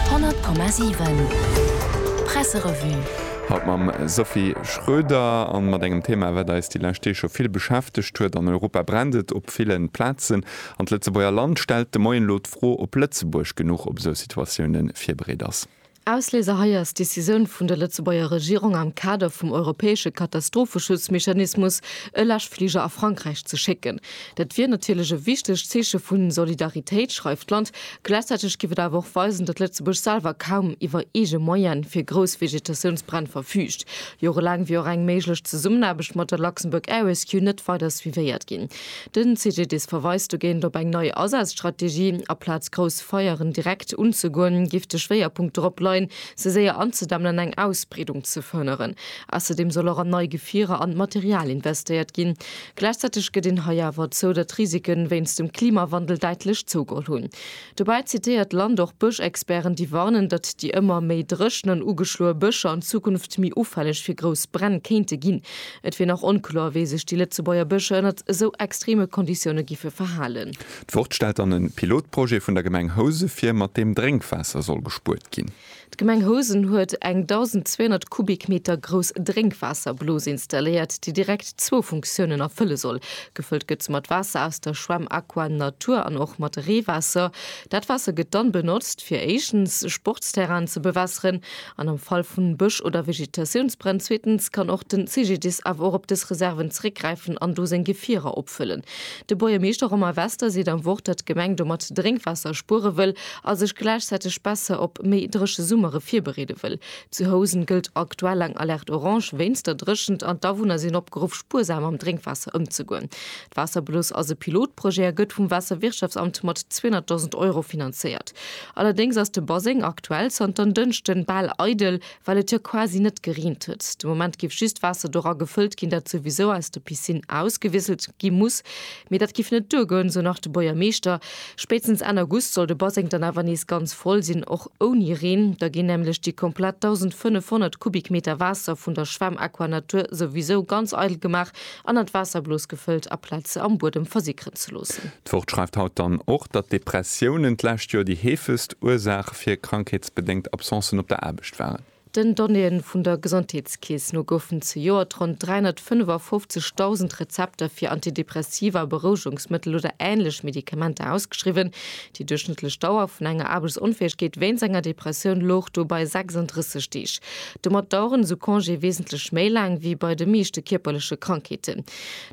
100,7 Presserevue. Haut mam Sophie Schroeder a mat engem Thema, wat eis déi lescht Deeg scho vill beschäftegt huet. An Europa brennt et op ville Plazen. An d'Lëtzebuerger Land stellt de Moien elo d'Fro, ob Lëtzebuerg genuch op esou Situatioune virbereet ass. Ausléiser hei ass d'Décisioun vun der Lëtzebuerger Regierung am Kader vum europäesche Katastropheschutzmechanismus e Läschfliger a Frankräich ze schécken. Dat wier natierlech e wichtegt Zeeche vu Solidaritéit, schreift d'Land. Gläichzäiteg géif et awer och weisen, datt Lëtzebuerg selwer kaum iwwer eege Moyene fir grouss Vegetatiounsbränn verfüügt. Jorelaang wier och eng méiglech Zesummenaarbecht mat der Luxembourg Air Rescue net weider suivéiert ginn. Den CGDIS verweist dogéint op eng nei Asazstrategie. Aplaz grouss Feieren direkt unzegoen, giff de Schwéierpunkt dorop leien, se séier anzedämmen an eng Ausbreedung ze verhënneren. Ausserdeem soll och an nei Gefierer an Material investéiert ginn. Gläichzäiteg gëtt een hei awer zou, datt d'Risiken wéinst dem Klimawandel däitlech zougeholl hunn. Dobäi zitéiert d'Land och Bëschexperten, déi warnen, datt déi ëmmer méi dréchen an ugeschloe Bëscher an Zukunft méi ufälleg fir grouss Bränn kéinte ginn. Et wier nach onkloer, wéi sech déi Lëtzebuerger Bëscher ënnert esou extreme Konditioune giffe verhalen. D'Wort stellt dann e Pilotprojet vun der Gemeng Housen vir, mat deem Drénkwaasser soll gespuert ginn. D'Gemeng Housen huet eng 1.200 Kubikmeter grouss Drénkwaasserblos installéiert, déi direkt zwou Funktiounen erfëlle soll. Gefëllt gëtt se mat Waasser aus der Schwämm Aqua Natur an och mat Reewaasser. Dat Waasser gëtt dann benotzt, fir éischtens Sportsterrainen ze bewässeren an am Fall vu Bësch oder Vegetatiounsbränn, zweetens kann och den CGDIS awer och op dës Reserven zeréckgräifen an do seng Gefierer opfëllen. De Buergermeeschter Romain Wester seet am Wort, datt d'Gemeng domat Drénkwaasser spuere wëll a sech gläichzäiteg besser op méi dréche Summere virbereede wëll. Zu Housen gëllt aktuell eng Alerte Orange wéinst der Dréchent an d'Awunner sinn opgeruff, spuersam mam Drénkwaasser ëmzegoen. D'Waasserbloos ass e Pilotprojet a gëtt vum Waasserwirtschaftsamt mat 200.000 Euro finanzéiert. Allerdéngs ass de Baseng aktuell zanter en Dënschden bal eidel. Well et jo quasi net gereent huet, de Moment giff just Waasser dora gefëllt ginn, dat souwisou aus der Piscine ausgewisselt gi muss. Mee dat giff net duergoen, sou nach de Buergermeeschter. Spéitstens Enn August soll de Baseng dann awer nees ganz voll sinn, och ouni Reen. Da ginn nämlech déi komplett 1.500 Kubikmeter Waasser vun der Schwämm Aquanatur souwisou ganz eidel gemaach, an an d'Waasserblos gefëllt a plaz se am Buedem versickeren ze loossen. D'Wort schreift haut dann och, datt Depressiounen d'lescht Joer déi heefegst Ursaach fir krankheetsbedéngt Absencen op der Aarbecht waren. Den Donnéeën vun der Gesondheetskeess no goufen zejoert ronn 355.000 Rezepter fir Antidepressiva, Berouegungsmëttel oder änlech Medikamenter ausgeschriwwen, Déi duerchschnëttlech Dauer vun enger Aarbechtsonfäegkeet wéinst enger Depressioun louch do bei 36 Deeg. Domat daueren esou Congéë wesentlech méi laang ewéi bei de meeschte kierperleche Krankheeten.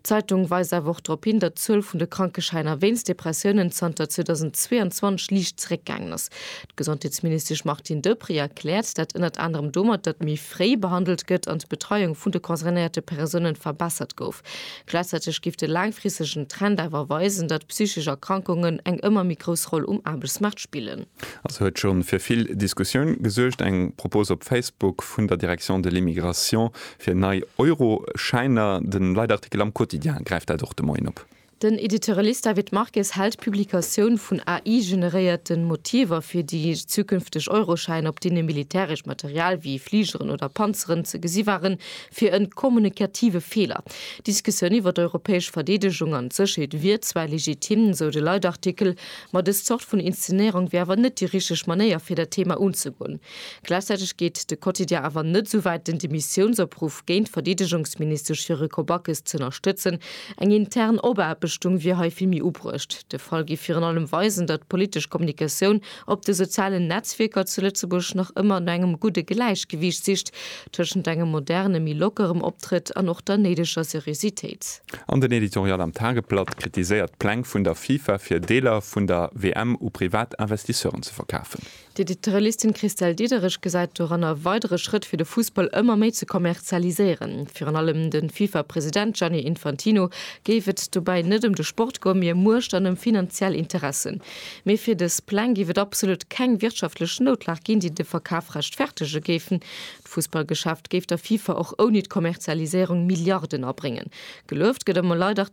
D'Zeitung weist awer och drop hin, datt d'Zuel vun de Krankeschäiner wéinst Depressiounen zanter 2022 liicht zeréckgaangen ass. D'Gesondheetsministesch Martine Deprez erkläert dat ënnert anerem domat, datt méi fréi behandelt gëtt an d'Betreiung vun de concernéierte Persounen verbessert gouf. Gläichzäiteg géif de laangfristegen Trend awer weisen, datt psychesch Erkrankungen eng ëmmer méi grouss Roll um Aarbechtsmaart spillen. Also huet scho fir vill Diskussioun gesuergt, eng Propose op Facebook vun der Direction de l'Immigration fir nei Euroschäiner. De Leitartikel am Quotidien gräift dat och de Moien op. Den Editorialist David Marques hält d'Publikatioun vun AI-generéierte Motiver fir déi zukünfteg Euroschäin, op deene militäresch Material wéi Fligeren oder Panzeren ze gesi waren, fir en kommunikative Feeler. D'Diskussioun iwwer d'europäesch Verdeedegung an d'Sécherheet wier zwar legitim, sou de Leitartikel, ma dës Zort vun Inszenéierung wier awer net déi richteg Manéier fir dat Thema unzegoen. Gläichzäiteg geet de Quotidien awer net esou wäit, den Demissiounsopruff géint d'Verdeedegungsministesch fir e Kobackes z'ënnerstëtzen. Eng intern Obaarbechtung wier hei vill méi ubruecht. De Fall géif virun allem weisen, datt d'politesch Kommunikatioun op de sozialen Netzwierker zu Lëtzebuerg nach ëmmer no engem gudde Gläichgewiicht sicht tëschent engem moderne méi lockerem Optrëtt an och der néideger Seriositéit. An den Editorial am Tageblatt kritiséiert d'Pläng vun der FIFA fir Deeler vun der WM u privat Investisseuren ze verkafen. D'Editorialistin Christelle Diederich gesäit doran e weidere Schrëtt fir de Fussball ëmmer méi ze kommerzialiséieren. Virun allem de FIFA-President Gianni Infantino géif et dobäi net ëm de Sport goen, mee ëm Muecht an ëm finanziell Interessen. Mee fir dës Pläng géif et absolut keng wirtschaftlech Noutlag ginn, déi de Verkaf rechtfertege géifen. D'Fussballgeschäft géif der FIFA och ouni d'Kommerzialiséierung Milliarden abréngen. Gelueft gëtt ëmmer leider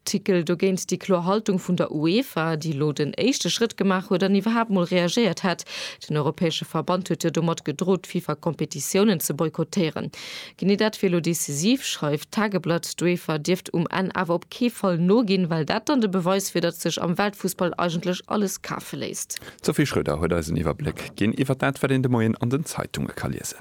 Tickl dogéint déi kloer Haltung vun der UEFA, déi elo den éischte Schrëtt gemaach huet an iwwerhaapt mol reagéiert hätt. Den europäesche Verband huet jo domat gedrot, d'FIFA-Competitiounen ze boykottéieren. Genee dat wier elo decisiv, schreift d'Tageblatt. D'UEFA dierft um Enn awer op kee Fall noginn, well dat dann de Beweis wier, datt sech am Weltfussball eigentlech alles kafe léisst. D'Sophie Schröder huet eis en Iwwerbléck ginn iwwert dat, wat een de Moien an den Zeitunge ka liesen.